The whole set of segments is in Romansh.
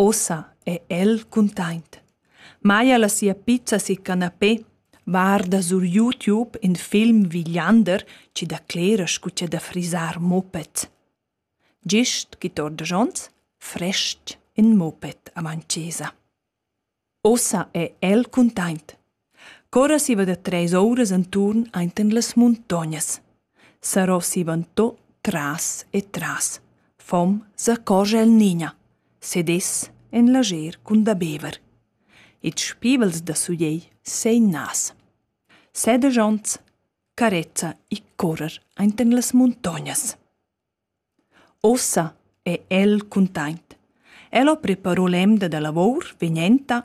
Ussa è el cuntaint. Maja la sia pizza sil canapé varda sur YouTube in film Villander chi declera scu cha da frisar muppets. Gist chi torda schons, fresc in muppet avant chesa. Ussa è el cuntaint. Corra siva da treis ouras enturn ainten las muntognas. Sarò sivantò tras e tras. Fom s'accorgia el Nina. Sedess en lager cun da bever. Ils spivels da suiei seinas. Sedegiants carezza i correr ainten las muntognas. Ussa è el cuntaint. El ho preparo l'emda da lavor vegnenta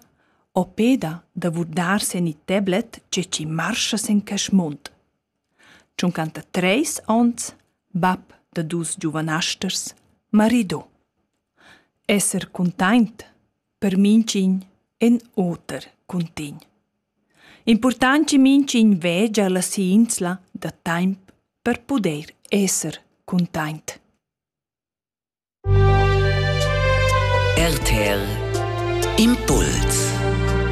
o peda da vurdar sen il tablet che chi marscha sen quest mund. Tschuncanta treis ons, bap da dus giuvanasters, marido. Esser cuntaint per minchin en oter cuntign. Important chi minchin vegia la si'insla da taimp per pudair esser cuntaint. RTL Impuls